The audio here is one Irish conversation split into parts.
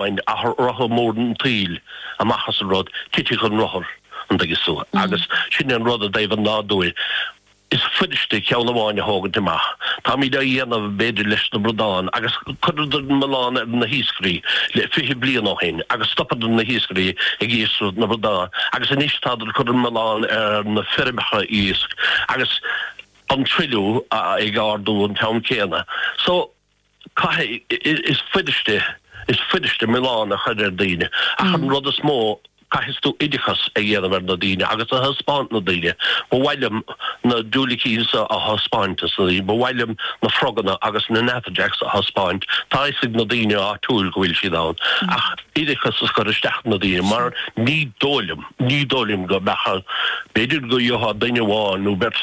Bain rotha mór an tsaoil amach as an rud, titfidh an rothar, an dtuigeas tú, agus sin é an rud i dtaobh an nádúir, is fuiriste ceann amháin a thógaint amach. Táimíd á dhéanamh b'fhéidir leis na bradáin, agus cuireadar an milleán ar na hiascairí le fiche bliain ó shin agus stopadar na hiascairí ag iascaireacht na bradáin agus anois tádar ag cur an milleán ar na feirmeacha iasc agus an truilliú ag ardú an t-am céanna. So. Caithfidh, is fuiriste, is fuiriste milleán a chur ar daoine ach an rud is mó, caithfidh tú oideachas a dhéanamh ar na daoine agus a thaispeáint na daoine. Ba mhaith liom na diúilicín seo a thaispeáint dos na daoine. Ba mhaith liom na froganna agus na natterjacks a thaispeáint. Tá fhios ag na daoine áitiúil go bhfuil siad ann ach oideachas a chur isteach do na daoine mar ní dóigh liom, ní dóigh liom go mbeadh, b'fhéidir go gheobhthá duine amháin nó beirt,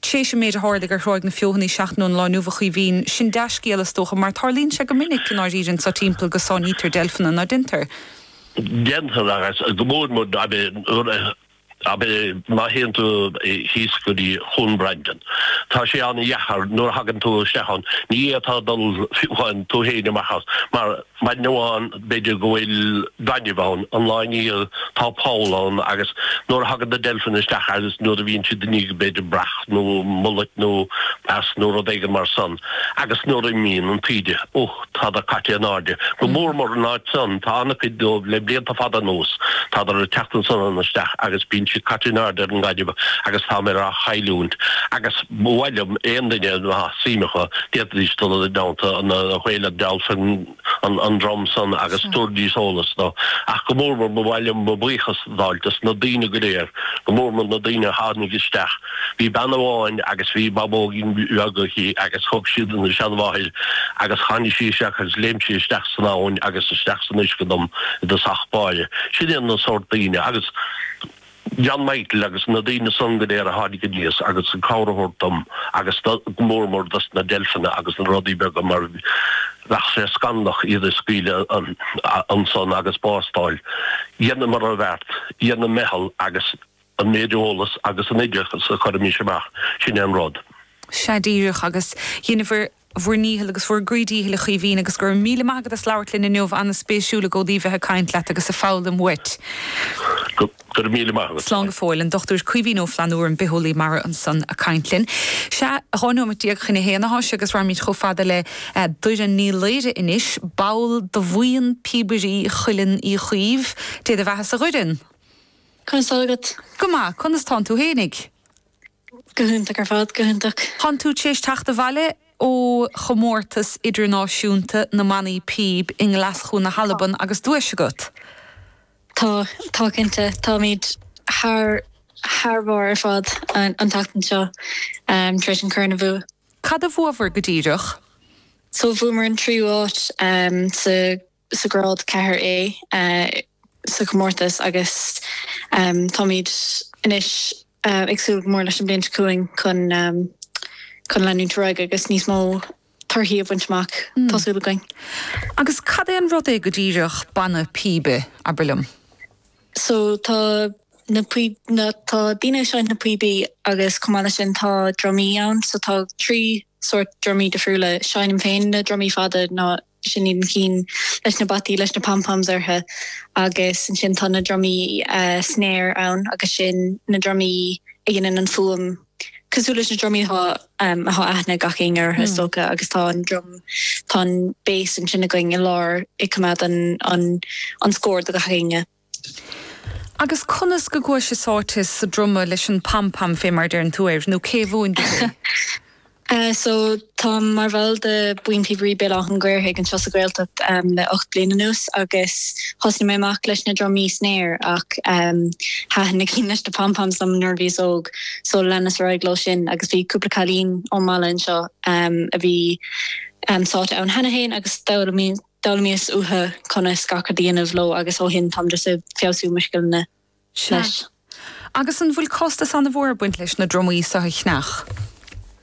Tréis an méid a thárlaigh ar Thráigh na Feothanaí seachtain ón lá inniu a Chaoimhín, sin dea-scéal is dócha mar tárlaíonn sé go minic i ndáiríre anso timpeall go sáinnítear deilfeanna, ná deintear? Deintear agus go mór mór ná beidh nuair a, ná beidh, má théann tú thíos go dtí Chuan Brandon. Tá sé an-dheacair nuair a thagann tú isteach ann, ní fhéadfá dul fiúcháin tú fhéin amach as mar, Maidin amháin, b'fhéidir go bhfuil gainimh ann, an lá i ndiaidh tá poll ann agus nuair a thagann na deilfeanna isteach agus nuair a bhíonn siad i ndiaidh b'fhéidir breac nó mullet nó eas nó rud éigin mar san agus nuair a imíonn an taoide, uch, tádar caite in airde. Go mór mór an áit san, tá an-chuid dóibh le blianta fada anuas, tádar ag teacht ansan isteach agus bíonn siad caite in airde ar an ngainimh agus tádar á chailliúint agus. Ba mhaith liom aon duine a mbeadh suim acu d'fhéadfaidís dul i dteannta na Whale and Dolphin an dream san agus tabharfaidís eolas dóibh. Ach go mór mór ba mhaith liom mo bhuíochas a ghabháilt dos na daoine go léir, go mór mór na daoine a tháinig isteach. Bhí bean amháin agus bhí babógín bheag aici agus thug sí don seanmháthair agus tháinig sí isteach agus léim sí isteach san abhainn agus isteach san uisce dom i dtosach báire. Sin iad na sórt daoine. Agus. John Michael agus na daoine san go léir a tháinig aníos agus an cabhair a thabhairt dom agus go mór mór dos na deilfeanna agus na rudaí beaga mar bheadh sé scannalach iad a scaoileadh ansan agus bás d'fháil, dheineamair an beart, dheineamair ár ndícheall agus an méid eolas agus an oideachas a chuirimís amach sin é an rud. Sea díreach agus dheineabhair bhur ndícheall agus bhur gcroí dícheall a Chaoimhín agus go raibh míle maith agat as labhairt linn inniu, an-spéisiúil i gcónaí bheith ag caint leat agus ag foghlaim uait. Go raibh míle maith agat. Slán go fóill, an Dr. Caoimhín Ó Flannabhra, an bitheolaí mara ansan ag caint linn. Sea, 12 nóimeat chun a haon atá sé agus raghaimíd chomh fada le Doireann Ní Laoire anois, ball do bhuíon Píobairí Chuileann Uí Chaoimh. Dé do bheathasa a Dhoireann. Conas tá agat? Go maith, conas tánn tú fhéinig? Go hiontach ar fad, go hiontach. Tánn tú t'éis teacht abhaile ó chomórtas idirnáisiúnta na mbannaí píob i nGlaschú na hAlban agus duais agat. Tá, tá cinnte. Táimid thar, thar barr ar fad an tseachtain seo tar éis an corn a bhua. Cad a bhuabhair go díreach? So bhuamar an tríú áit sa. sa grád 4A sa chomórtas agus táimid anois ag súil go mór leis an bhliain seo chugainn chun, chun leanúint ar aghaidh agus níos mó torthaí a bhaint amach, tá súil againn. Agus cad é an rud é go díreach Banna Píbe, abair liom? So tá na píb, na, tá daoine ag seinnt na píobaí agus chomh maith le sin tá drumaí ann so tá trí sórt drumaí difriúla, seinnim féin na drumaí fada nó, Sin iad na cinn leis na bataí leis na pom-poms ortha agus ansin tá na drumaí snare ann agus sin na drumaí a dheineann an fuaim cosúil leis na drumaí atá atá aithne ag gach éinne ortha is dócha agus tá an druma, tá an bass ansin againn i lár ag coimeád an an an scóir do gach éinne. Agus conas go gcuais-se sáite sa druma leis an pam pam fé mar a deireann tú air, nó cé a mhúin duit é? Eh so táim mar bhall de Bhuíon Píobairí Béal Átha'n Ghaorthaidh anseo sa Ghaeltacht em le ocht bliain anuas agus thosnaigh mé amach leis na drumaí snare ach em thaitin na cinn leis na pam pams liom nuair a bhíos óg so leanas ar aghaidh leo sin agus bhí cúpla cailín ón mbaile anseo em a bhí em sáite ann cheana fhéin agus d'fhoghlaimí D'fhoghlaimíos uatha conas gach rud a dhéanamh leo agus ó shin táim just ag feabhsú mo scileanna leis. Sea. Agus an bhfuil costas ana-mhór ag baint leis na drumaí so a cheannach?